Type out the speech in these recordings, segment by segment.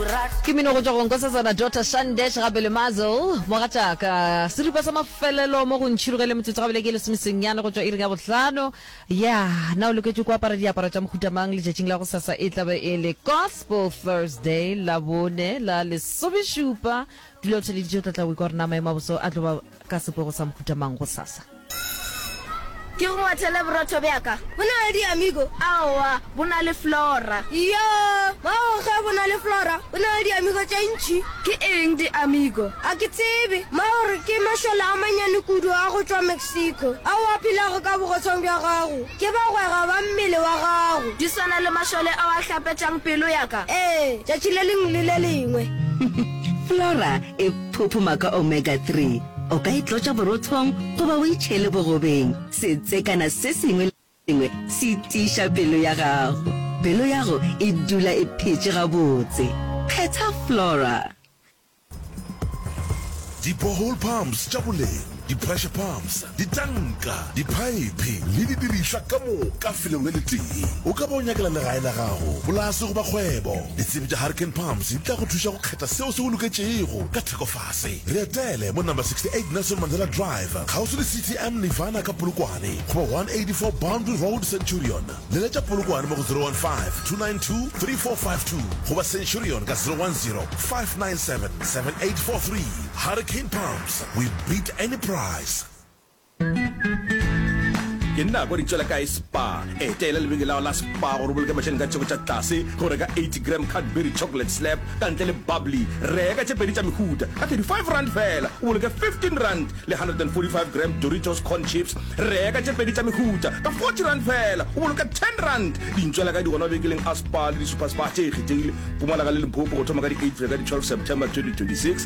Ke mmino go tšwa go Nkosazana Daughter Shandesh gape le Mazel, Mogatšaka. Seripa sa mafelelo mo go ntšhirogele metsotso gabele ke e lesomesenyane go tšwa iring ya bohlano. Yeah, na o loketše ku apara diaparo tša mohuta mang letšatšing la gosasa? E tlabe e le Gospel Thursday, Labone la lesomešupa. Dula o theleditše, o tla tla o ikwa gore na maemo a boso a tlo ba. Ka seporo sa mohuta mang gosasa? Ke go ngwathele borotho bja ka. Bo na le diamigo? Aowa, bo na le flora. Iyo, mago ge bo na le flora, bo na le diamigo tše ntši. Ke eng diamigo? A ke tsebe. Mago re ke mašole a mannyane kudu a go tšwa Mexico, ao a phelago ka bogotshwang bja gago. Ke bagwera ba mmele wa gago. Di swana le mašole ao a hlapetšang pelo ya ka? Ee, tšatši le lengwe le le lengwe. Flora e. Phuphuma ka omega 3. O ka e tlotša borothong goba o e tšhele bogobeng. Setsekana se sengwe le se sengwe se tiiša pelo ya gago. Pelo yago e dula e phetše gabotse. Phetha Flora. Di-borehole pumps tša boleng. di-pressure pumps, ditanka, diphaephe le didirišwa ka moka felong le letee. O ka ba o nyakela legae la gago, polase goba kgwebo. Ditsebi tša Harken Pumps di tla go thuša go kgetha seo se go loketšego ka thekofase. Re etele mo Number 68 Nelson Mandela Drive, kgauswi le CTM Nirvana ka Polokwane, goba 184 Boundary Road, Centurion. Leletša Polokwane mo go 015-292-3452 goba Centurion ka 010-597-7843. Harken Pumps, we beat any price. Ke nna a kwa di tšwela kae spa. Etela lebenkele la la spa gore o boloke mašeleng ka tšheko tša tlase go reka 80 gram Cadbury chocolate slab ka ntle le bubbly. Reka tše pedi tša mehuta ka 35 rand fela o boloke 15 rand le 145 gram Doritos corn chips. Reka tše pedi tša mehuta ka 40 rand fela o boloke 10 rand. Dintšwela kae di gona mabenkeleng a spa le di super spa tše kgethegile Mpumalanga le Limpopo go thoma ka di 8 go ya ka di 12 September 2026.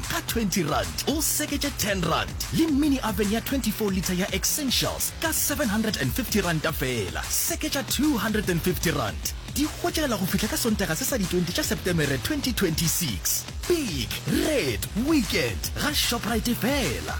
Ka twenty rand o seketše ten rand le mini oven ya twenty four litre ya Essentials ka seven hundred and fifty ranta feela. Seketša two hundred and fifty rand. Di hwetšagala go fihla ka Sontaga se sa di twenty tša Setemere twenty twenty six. Big Red Weekend ga Shoprite feela.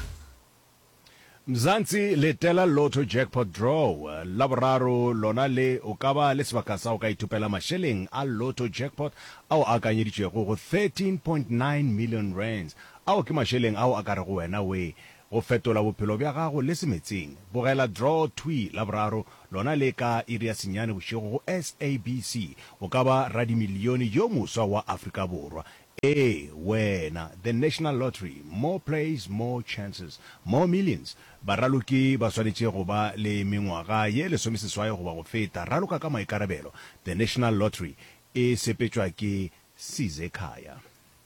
Mzansi letela Lotto Jackpot Draw la boraro lona le o ka ba le sebaka sa go ka ithopela mašeleng a Lotto Jackpot ao a akanyeditšwego go R13.9 million, ao ke mašeleng ao a ka rego wena wee go fetola bophelo bja gago le semetsing. Bogela Draw Thwi la boraro lona le ka iri ya senyane bošego go SABC, o ka ba radimilione yo moswa wa Afrika Borwa. Ee, wena. The National Lottery, more plays, more chances, more millions. Baraloki ba swanetše go ba le mengwaga ye lesomeseswai goba go feta. Raloka ka maikarabelo. The National Lottery e sepetšwa ke Sizekhaya.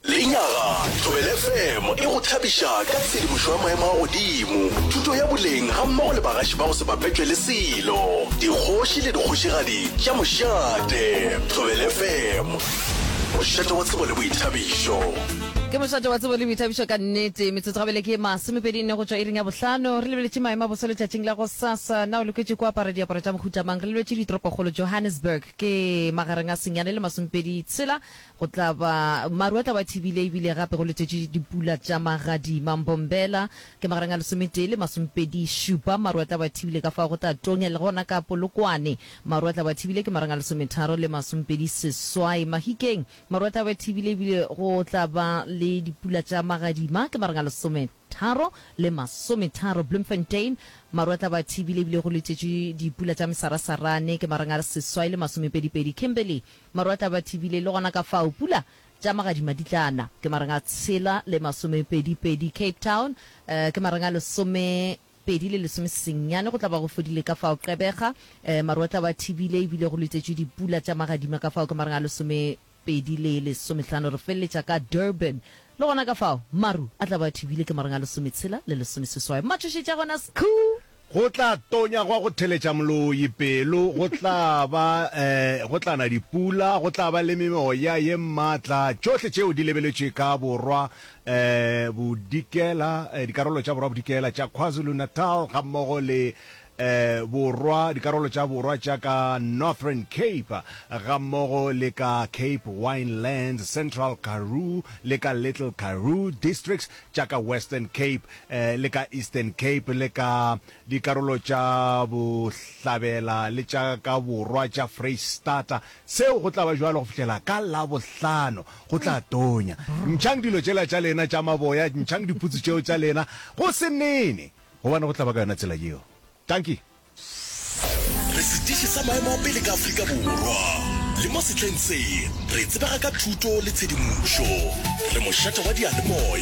Lenyaga, Thobela FM e go thabiša ka tshedimošo ya maemo a godimo, thuto ya boleng gammogo le bagaši ba go se bapetšwe le selo, dikgoši le dikgošigadi tša mošate. Thobela FM. Mošate wa tsebo le boithabišo. Ke mošate wa tsebo le boithabišo ka nnete. Metsotso gabele ke masomepedi nne go tšwa iring ya bohlano. Re lebeletše maemo a boso letšatšing la go sasa. Na o loketše ko apara diaparo tša mohuta mang? Re lebetše ditoropokgolo Johannesburg ke magareng a senyane le masomepedi tshela. Go tla ba maru a tla ba thibile ebile gape go letšetše dipula tša magadima. Mbombela ke magareng a lesometee le masomepedi šupa. Maru a tla ba thibile ka fao go tla tonya le gona ka Polokwane. Maru a tla ba thibile ke marang a lesometharo le masompedi seswai. Mahikeng, maru a tla ba thibile ebile go tla ba le dipula tša magadima ke marang a lesometharo le masometharo. Bloemfontein, maru a tla ba thibile ebile go letetšwe dipula tša mesarasarane ke marang a seswai le masomepedipedi. Kimberley, maru a tla ba thibile le gona ka fao pula tša magadima di tla na ke marang a tshela le masomepedipedi. Cape Town, ke marang a lesome. Pedi le lesome sesennyane go tla ba go fodile ka fao Qebega, ee, maru a tla ba a thibile, e bile go letšetšwe dipula tša magadima ka fao ka mareng a lesomepedi le lesomehlano. Re feleletša ka Durban, le gona ka fao maru a tla ba a thibile ke mareng a lesometshela le lesomeseswai. Mmatšhošetši a gona Skhuu! Go tla tonya gwa go theletša moloi pelo, go tla ba, ee, go tla na dipula, go tla ba le memoya ye matla, tšohle tšeo di lebeletšwe ka borwa Bodikela, dikarolo tša Borwa Bodikela tša KwaZulu-Natal gammogo le Borwa, dikarolo tša Borwa tša ka Northern Cape gammogo le ka Cape Winelands, Central Karoo le ka Little Karoo, Districts tša ka Western Cape le ka Eastern Cape le ka dikarolo tša Bohlabela le tša ka Borwa tša Freistata Seo go tla ba bjalo go fihlela ka Labohlano. Go tla tonya. Ntšhang dilo tšela tša lena tša maboya, ntšhang diputsu tšeo tša lena, go se nene, gobane go tla ba ka yona tsela yeo. Dankie. Re setiši sa maemo a pele ka Afrika Borwa, le mo sehleng se re tsebega ka thuto le tshedimošo. Re mošate wa diyalemoya.